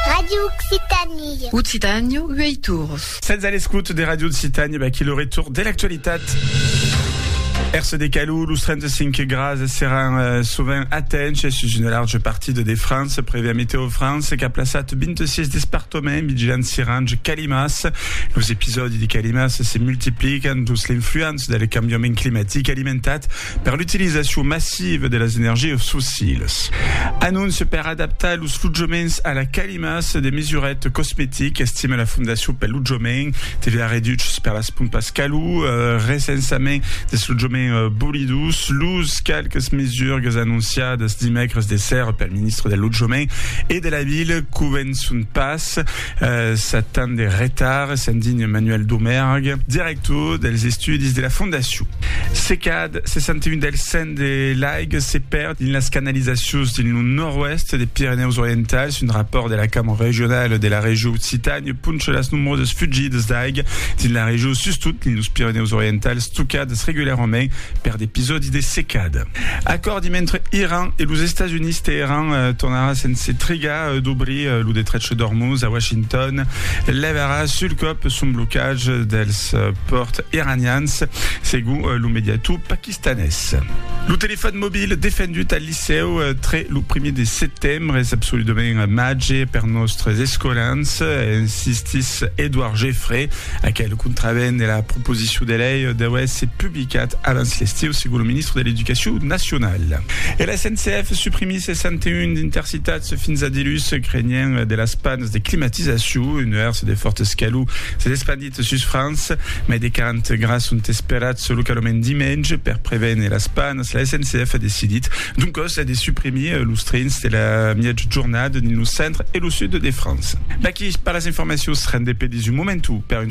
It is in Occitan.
Radio Occitanie. Occitània, uei tours. Sètz a l'escouta de Radio Occitània, vaquí lo retour de l'actualitat. Èrse de calor, los 35 grads seràn eh, sovent atenhs sus una large partida de França, prèvia Meteo France qu'a plaçat 26 despartaments vigilants sirange calimas. Los episòdis de calimas se multiplican dus l'influença del cambiament climatic alimentat per l'utilizacion massiva de las energias fossilas. Anóncia per adaptar los lotjaments a la calima, se de mesuret cosmetic, estima la Fondacion pel Lotjament, TVA reduchs per las pompas calor, recensament dels lotjaments bolidos, los qualques mesurgas anonciadas dimècres de sèrra pel ministre del Lotjament e de la Vila convençon pas. Sèt ans de retard, s'indigna Manuel Domergue, director dels estudis de la fondacion. Se cad 61 del cent de l'aiga se pèrd dins las canalizacions dins lo nòrd-oèst de Pirenèus Orientals, un rapòrt de la Cambra Regionala de la Regió Occitània poncha las nombrosas fugidas d'aiga dins la regió, sustot dins los Pirenèus Orientals, tocadas regularament per d'episòdis de secada. Acòrdi mentre Iran e los Estats Units Teheran tornarà sense trigar d'obrir lo detrech d'Ormuz a Washington levarà sul còp son blocatge dels pòrts iranians segon lo mediator paquistanés. Lo telefòn mobil defendut al licèu tre lo primièr de setembre es absoludament màger per nòstres escolans, insistís Edouard Geffray, aquel contravent de la proposicion de lei deu èsser publicat. Qu'ath abans l'estiu sigue lo ministre de l'Educacion nacionala. E la SNCF suprimisse 101 intercitats fins a dilhus, crenhent de las panes de climatizacion. Un nuèrs de fòrt escalor s'es espandit sus França. Mai de 40 grads sont esperats localament dimenge. Per prevene las panes, la SNCF a decidit doncòs de suprimir los trens de la miètja jornada dins lo centre e lo sud de França. Vaquí per las informacions rendepedis un momentu per un.